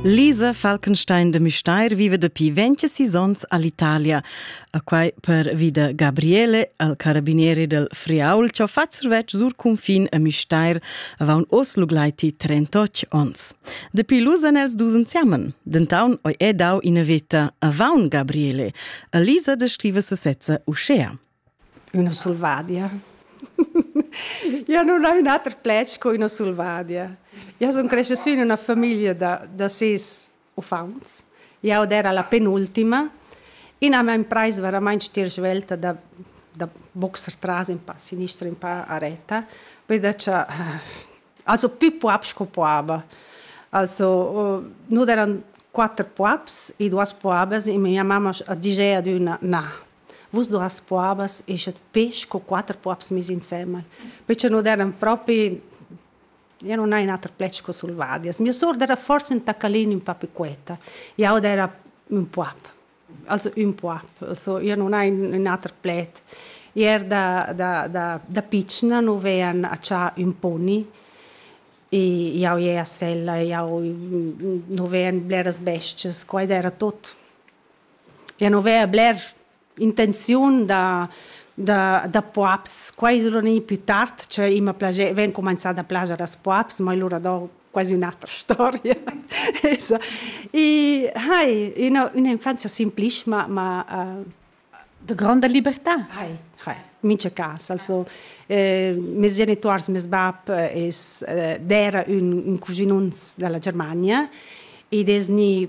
Lisa Falkenstein de Müstair vive dapi 26 onns all'Italia, a quai per vida Gabriele, al carabiniere del Friaul, che fa survetsch sur confin a Müstair avant os luglaiti 38 onns. Dapi lusan els dus insiamen, dentaun oi è dau ina veta avant Gabriele. A Lisa descrive sesezza uschea. Üna sulvadia. Eu nun ho ün ater pled sco üna sulvadia. Eu sun crescha sü in üna famiglia da da sis uffants. Jau d'era la penultima. Ina m'ha imprais veramaing stir svelta da da boxer tras ün pa a sinistra, ün pa a retta, be da cha also pü poap sco poaba. Also nu d'eran quatter poaps e duos poabas e mia mamma a disch ad üna: Na, Vus duas puabas eschat pes sco quatter puabs mesi insembel, perche nus eran propi io non hai ün ater pled sco sulvadias. Mia sour era forsa ün tacalin ün pa piquetta, jau era ün puab, also ün puab, also io non hai ün ater pled. Io er da da da da pitschna nu vean accià ün poni e jau ie a sella e jau nu vean bleras bestias, quai era tot. Ja nu vea bler intenziun da da da poaps. Quai es lura gnü pü tard, cioè i m'ha plager, vain cumanzà da plager als poaps, ma lura do quasi ün'atra storia. Esa. I hai üna ün'infanzia simplist, ma ma De gronda libertà. Hai, hai, mincha cas. Also, meis genituors, meis bap es d'eira ün ün cuginuns da la Germania ed es gni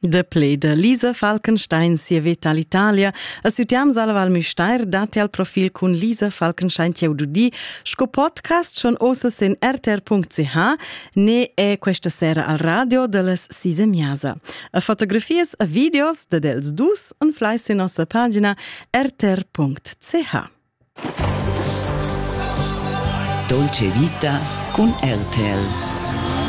Da pled da Lisa Falkenstein sia veta all'Italia a Sütiam Sala Val Müstair datti al profil cun Lisa Falkenstein ch'eu dudi sco podcast schon osas in rtr.ch ne è questa sera al radio da las Sise Miasa. A fotografias a videos da dels dus en flais in nossa pagina rtr.ch. Dolce vita cun RTL.